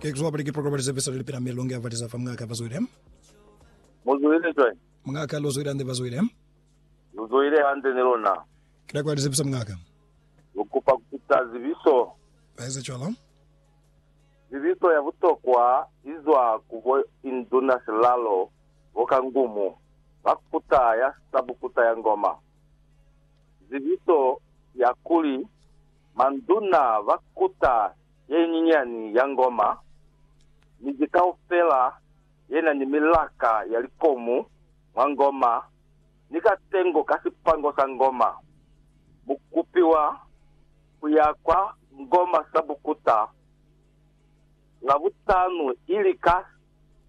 Ke kuzwa pali ki programa lizepe sali lipila mi longe avaliza fa mungaka vazwile. Muzwile cwañi? Mungaka luzwile ande vazwile. Luzwile hande ni lona. Kila kwa lizepisa mungaka. Lukupa kupita zibiso. Baeza cwalo. Zibiso ya butokwa izwa ku bo induna silalo bo kangumu ba kuta ya sabukuta ya ngoma. Zibiso ya kuli Manduna ba kuta ye nyinyani ya ngoma, miji kaufela ye na ni milaka ya likomu mwa ngoma, ni katengo ka sipango sa ngoma. Mu kupiwa ku ya kwa ngoma sa bukuta Labutanu ili ka,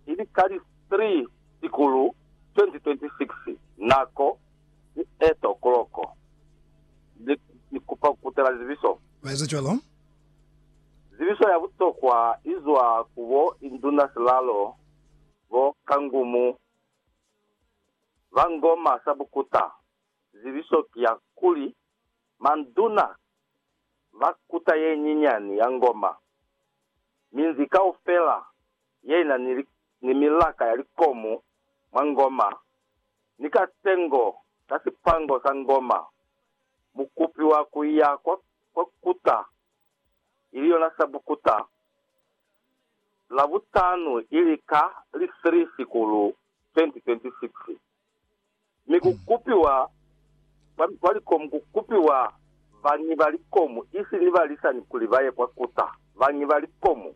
ili ka li 3 Shikulu 2026. Nako. Ni eto koloko. Ni, ni kupa kukutela zibiso. Ba eza cwalo. Zibiso ya butokwa izwa ku bo induna silalo, bo kangumu, ba ngoma sa bukuta. Zibiso ki ya kuli, manduna ba kuta ye nyinyani ya ngoma. Minzi kaufela ye na ni, ni milaka ya likomu mwa ngoma ni ka sengo ka sipango sa ngoma, mu kupiwa ku iya kwa, kwa kuta, ili yona Sabukuta, Labutanu, ili ka li 3 Sikulu 2026. Mi ku kupiwa kwa, kwa likomu, ku kupiwa bañi ba likomu, isi ni balisani kuli ba ye kwa kuta, bañi ba likomu.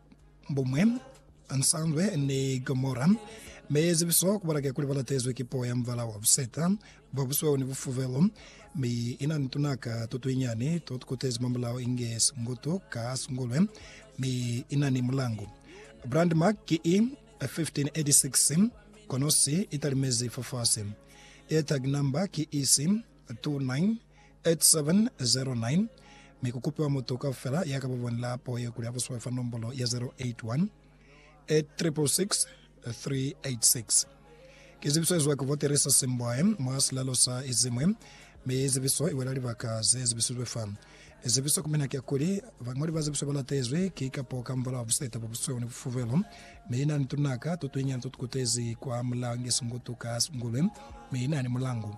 Buñwi, Nsanzwe ni Gomora. Mi zibiso kubala ke kuli ba latezwi ki puo ya mubala wa buseta, bwa busweu ni bufubelu. Mi ina ni tunaka to tuinyani to tukutezi mamulao inge singutu ka singulwe, mi ina ni mulangu. Brandmark ki i, 1586, kono si italimezi fafasi. Airtag number ki isi, 298709 mi ku kupiwa mutu kaufela ya ka ba bonela po ye kuli a buswe fa nombolo ya 081 866 386. Ki zibiso ye zwa kivoteri sa Simbwae mwa silalo sa Izimwe, mi zibiso i wela libaka ze zibisilwe fa. Zibiso ku mina ki ya kuli bañoli ba zibiso ba latezwi ki kapo kamubala wa buseta bwa busweu ni bufubelo, mi i na ni tunaka to tunyinyani to tu kutezi kwa Mulangi Sungutu ka Sungulwe, mi i na ni mulangu.